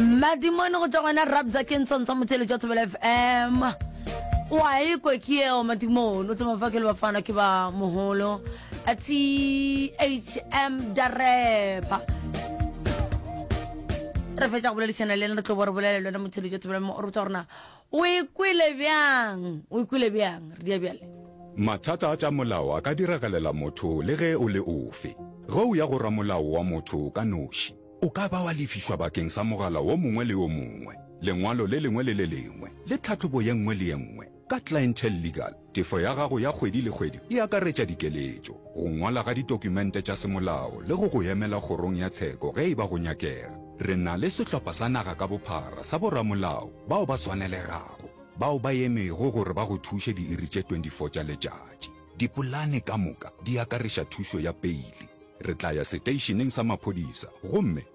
madimone go tšwa gona rabza ke ntsontswa motsele jwa thobela fm wa ekwe ke eo madimone o tsema fa ke le bafana ke ba mogolo thm dareba re fetsa go boledišana le ena re tlo bo re bolele lone motsele jwa thobela mo o re tsa gorena O e kwele bjang? O e kwele bjang? Re dia bjale. Mathata a tša molao a ka diragalela motho le ge o le ofe. Ge o ya go ramolao wa motho ka noši, o ka ba wa lefišwa bakeng sa mogala wo mongwe le wo mongwe, lengwalo le lengwe le le lengwe, le tlhahlobo ye nngwe le ye nngwe ka Clientele Legal. Tefo ya gago ya kgwedi le kgwedi e akaretša dikeletšo, go ngwala ga ditokumente tša semolao le go go emela kgorong ya tsheko ge e ba go nyakega. Re na le sehlopha sa naga ka bophara sa boramolao bao ba swanelegago bao ba emego gore ba go thuše diiri tše 24 tša letšatši. Dipolane ka moka di akareša thušo ya peile. Re tla ya seteišeneng sa maphodisa gomme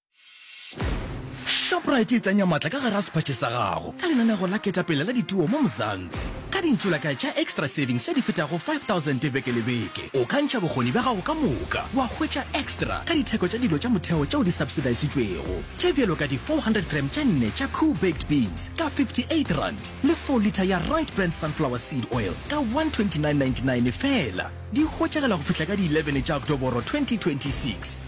Shoprite e tsenya matla ka gara sephatše sa gago ka lenanego la ketapele la dituo mo Mzansi. Ka dintsulaka tša Extra Savings tše di fetago 5000 beke le beke, o ka ntšha bokgoni bja gago ka moka wa hwetša extra ka ditheko tša dilo tša motheo tšeo di subsidisitšwego, tše bjalo ka di 400 gram tše nne tša Koo baked beans ka R58 le 4 litha ya Right Brand Sunflower Seed Oil ka R129.99 feela. Di hwetšagela go fihla ka di 11 tša Oktoboro 2026.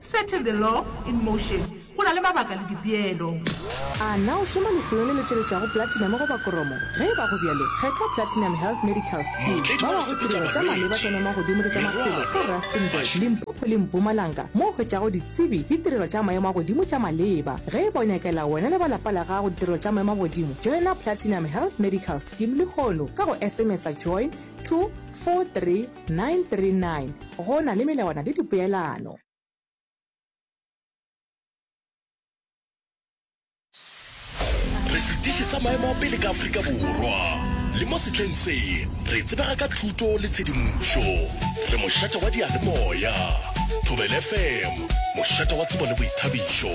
Settle the law in motion, go na le mabaka le dipeelo. A na o šoma lefelong le le tšweletšago platinum goba koromo? Ge e ba go bjalo, kgetha Platinum Health Medical Scheme. Ba wa go tirelo tša maleba tša namagodimo le tša maphelo ka Rustenburg, Limpopo le Mpumalanga mo o hwetšago ditsebi le tirelo tša maemo a godimo tša maleba. Ge e ba o nyakela wena le ba lapa la gago ditirelo tša maemo a godimo, joina Platinum Health Medical Scheme lehono ka go SMS-a join to 431. 939 Go na le melawana le dipeelano. Re setiši sa maemo a pele ka Afrika Borwa, le mo sehleng se re tsebega ka thuto le tshedimošo. Re mošate wa diyalemoya, Thobela FM, mošate wa tsebo le boithabišo.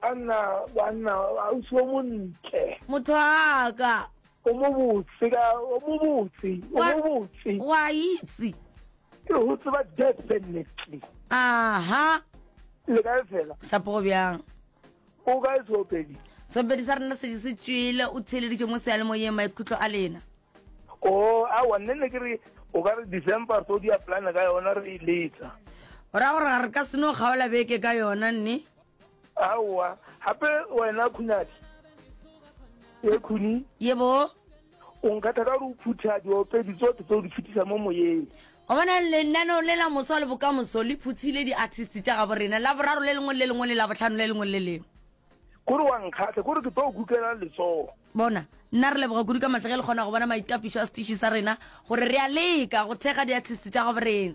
Banna, banna, ausi o montle. Motho wa ka. O mo botse ka, o mo botse, o mo botse. Wa itse. Ke ho tseba definitely. Aha. Le kae fela? Shapo go bjang? O ka e sopedi. Sopedi sa rena se di se tšwile, o tsheleditše mo seale mo yema ikhutlo a lena. Oh, a wa nne ne ke re o ka re December so di a plan ka yona re e letsa. Ora gore re ka seno kgaola beke ka yona nne. aowa gape wena khunadi ye khuni yebo o nkgatha ka gore o phutha diopedi tsote tse o di phutisa mo moyeng go bona lenaneo le la moso le bokamoso le phuthile di-artist tša gabo rena la boraro le lengwe le lengwe le la botlhano le lengwe le lengwe kore wa nkgatlha kore ke tlo o kukela letsogo bona nna re leboga kudu ka matlha ge le kgona go bona maitapišo a setiši sa rena gore re a leka go thekga di-artist tša gabo rena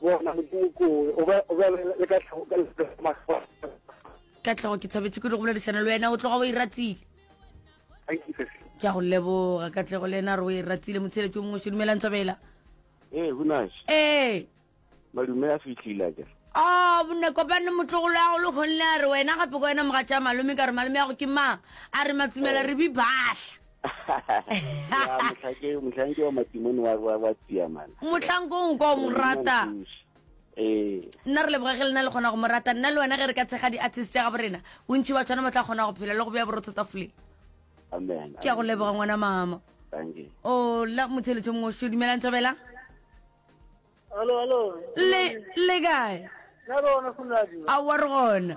bona modimo kowe o be o be le ka tlhogo ka le mahlo ka tlhogo ke tshabetse ke le go boledišana le wena o tloga o e ratile thank you sir ke a go leboga ka tlego le ena re o e ratile motsheletso mongwe se dumelang thabela ee hunas ee malume a fitlhile ke a bone kopane motlogolo ya go le kgonne a re wena gape ko wena moga tša malome ka re malome ya go ke mang a re matsumela re bi bahla mohlanke wa matimone wa tsiamana mohlanko o nka o mo rata ee. nna re leboga ge le na le kgona go mo rata nna le wena ge re ka tshega di-artist ya gabo rena bontšhi ba tshwana ba tla kgona go phela le go beya borotho tafoleng ke ya go leboga ngwana mama o oh, la motheletso mongwe o sho dumelang thabela le kae a wa re gona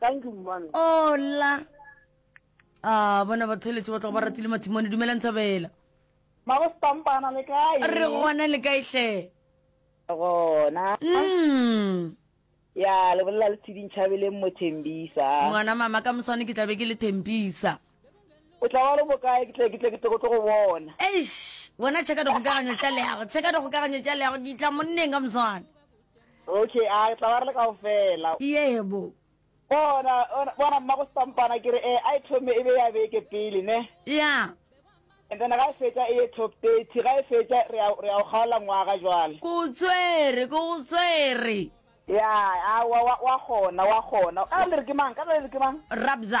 Thank you mmane. Hola. Ah, bona ba theletše ba tloga ba ratile mathimone dumela nthabela. Mabo stampana le kae? Re gona le kae hle? Gona. Mm. Ya le bolela le tshiding chabeleng mo Thembisa. Ngwana mama ka moswane ke tlabe ke le Thembisa. O tla ba le bokae ke tle ke tle ke tlo go bona. Eish, bona cheka dikgokagano tša leago, cheka dikgokagano tša leago, ke tla monneng ka moswane. okay a re tla ba re le kao fela yebo bona bona mma go stampana ke re eh a e thome e be ya beke pele ne ya and then ga e fetsa e ye top thirty ga e fetsa re ya re ya go kgaola ngwaga jwale ko tswere ko go tswere ya a wa wa wa gona wa gona ka le re ke mang ka le re ke mang rabza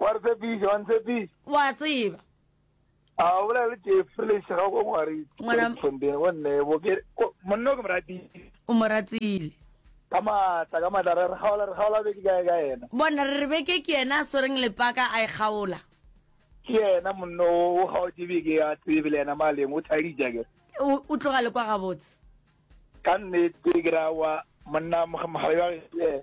O a re tshepiša, wa ntshepiša. O a tseba. A o bolela le Jeffrey le šega go ngwari. Ngwana- Tshondene go nne bo ke ko- monna o ke mo ratile. o mo ratile Ka matla, ka matla re re gaola re gaola be ke kae ka yena. bona re re beke ke yena a swereng lepaka a e kgaola Ke yena monna o o gaotše be ke a tsebe le yena maleng o thadija ke. o o tloga le kwa gabotse Ka nnete ke ra wa monna moga- mogale wa ge.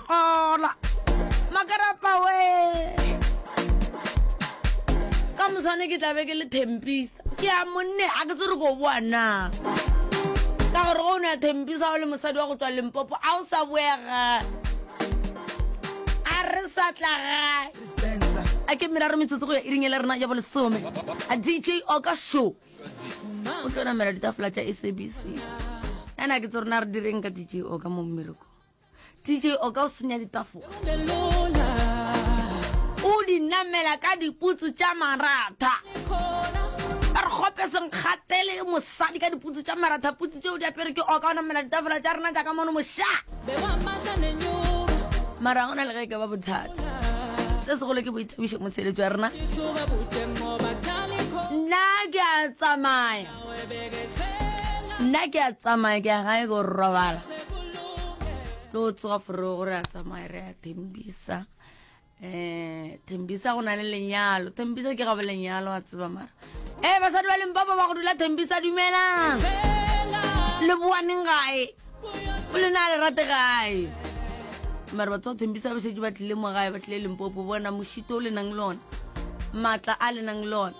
Xola makarapa we ka mosane ke tlabe ke le thempisa ke ya monne a ke tsere ko boa na ka gore go o ne ya thempisa o le mosadi wa go tswa lempopo a o sa boega a re sa tla gae a ke meraro metsotso go ya iring ele rena ya bolesome a dj oka show o tlo namela ditafola tša sabc ena ke tse rena re direng ka dj oka mo mmereko dj o ka o senya ditafola o di namela ka diputsu tša maratha ba re gope senkgatele mosadi ka diputsu tša maratha putsu tšeo di apere ke o ka o namela ditafola tša rena jaaka mono moša mara gona le ge ke ba bothata se segolo ke boithabišo motsheletso ya rena nna ke a tsamaya nna ke a tsamaya ke ya gae go robala tlo tsoga fore gore a tsamaya re a thembisa um thembisa go na le lenyalo thembisa ke gabo lenyalo a tseba mara e basadi ba lempapa ba go dula thembisa dumelang le boaneng gae o le na le rate gae mare batho ba thembisa ba šetše ba tlile mo gae ba tlile limpopo bona mošito o le nang le ona maatla a le nang le ona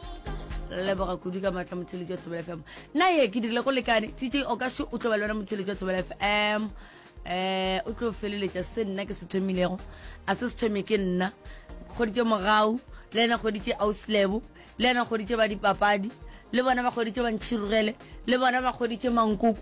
leboga kudu ka maatla motsheletši wa thobela fm nna ye ke dirile go lekane tj o ka se o tlo ba le wena motsheletši wa thobela fm um o tlo feleletša se nna ke se thomilego a se se thome ke nna kgoditše mogau le ena kgoditše auslebo le ena kgoditše ba dipapadi le bona ba kgoditše bantšhirogele le bona ba kgoditše mankoko